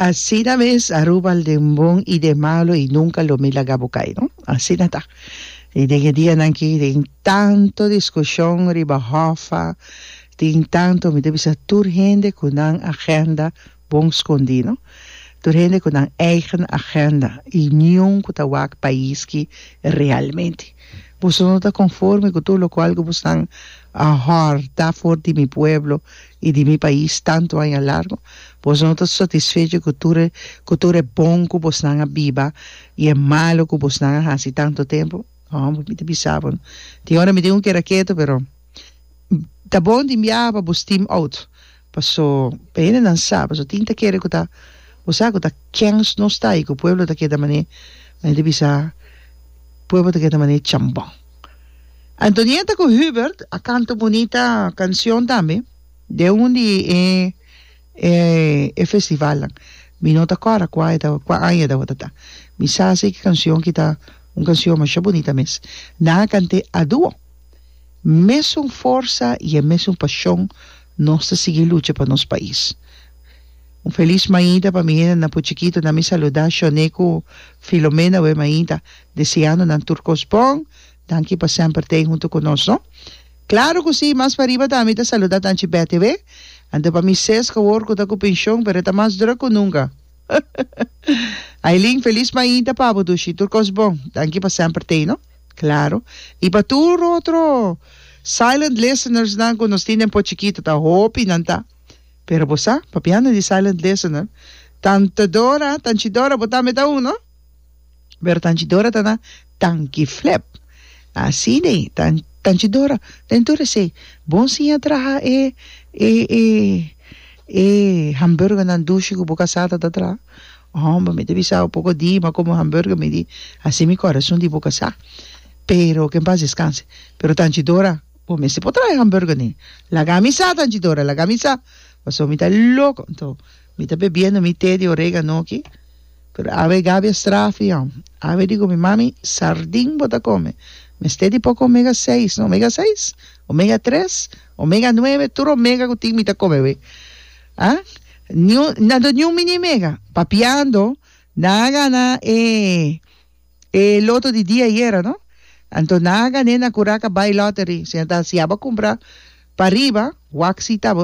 Asina mes Aruba al den bon y den malo y nunca lo mi laga bo cay no. Asina ta. Y den e dia nan aki tin tanto discusion riba Hoffa, tin tanto mi ta bisa tur hende cu nan agenda bon scondi no. Tur hende cu nan eigen agenda y niun cu ta wak pais ki realmente. Boso no ta conforme cu tur locual cu boso nan a horta for di mi pueblo I di mi pais tantu aña largu, bos no ta satisfecho ku tur e ku tur e bon ku bosnan a biba i e malu ku bosnan a hasi tantu tempu? Ho, mi ta bisa bo, tin ora mi tin ku keda ketu, pero ta bon tin biaha pa bo steam out, paso e hendenan sa, paso tin ta kere ku ta, bo sa ku ta kens nos ta i ku pueblo ta keda mané, mi ta bisa pueblo ta keda mané chambon. Antonietta cu Hubert a canta un bunita cancion tambe den un di e e e festivalnan. Mi no ta cora cua e taba cua aña e tabatata. Mi sa si ki cancion ki ta un cancion masha bunita mes. Nan a cant'e a duo. Mesun forsa y e mesun pasion nos ta sigui lucha pa nos pais. Un feliz mañita pa mi hendenan Puchiquito. Na mi saluda Shone cu Filomena we mañita. Deseando nan tur kos bon. Danki pa semper t'ei huntu ku nos no. Klaro ku si, mas pariba ta mi ta saluda tanchi BTW. Anto pa mi Seska awor ku ta ku penshon pero e ta mas druk ku nunka. Ailin, Felis mainta pa bo dushi. Tur kos bon. Danki pa semper t'ei no. Klaro. I pa tur otro silent listeners nan ku nos tin den Port Chikito ta hopi nan ta. Pero bo sa, papiando di silent listener, tan Todora, tan Chidora bo tambe ta un no. pero tanchidora ta na tanki flep asi de tan tanchidora den tur esei bon siña traha e e e e hamburger nan dushi ku bo kasada ta traha homber mi ta bisa un poko di mi komo hamburger mi di asi mi korason di bo kasa pero ke en pas deskanse pero tanchidora bo mester por traha e hamburger ni laga mi sa tanchidora laga mi sa pasobra mi ta loko. Mi ta bebiendo mi te di oregano aki, pero awe Gabi a strafi an. Awe di ku mi, Mami, sardin bo ta kome, mester di poko omega seis, no omega seis, omega tres, omega nuebe, tur omega ku tin mi ta kome awe. Ha? Niun, nan do niun mini omega? Papiando, nan a gana e e loto di dia ayera, no? Anto nan a gané na Curaca Buy Lottery. Si nan ta hasiaba kumpra pa riba, waksi ta.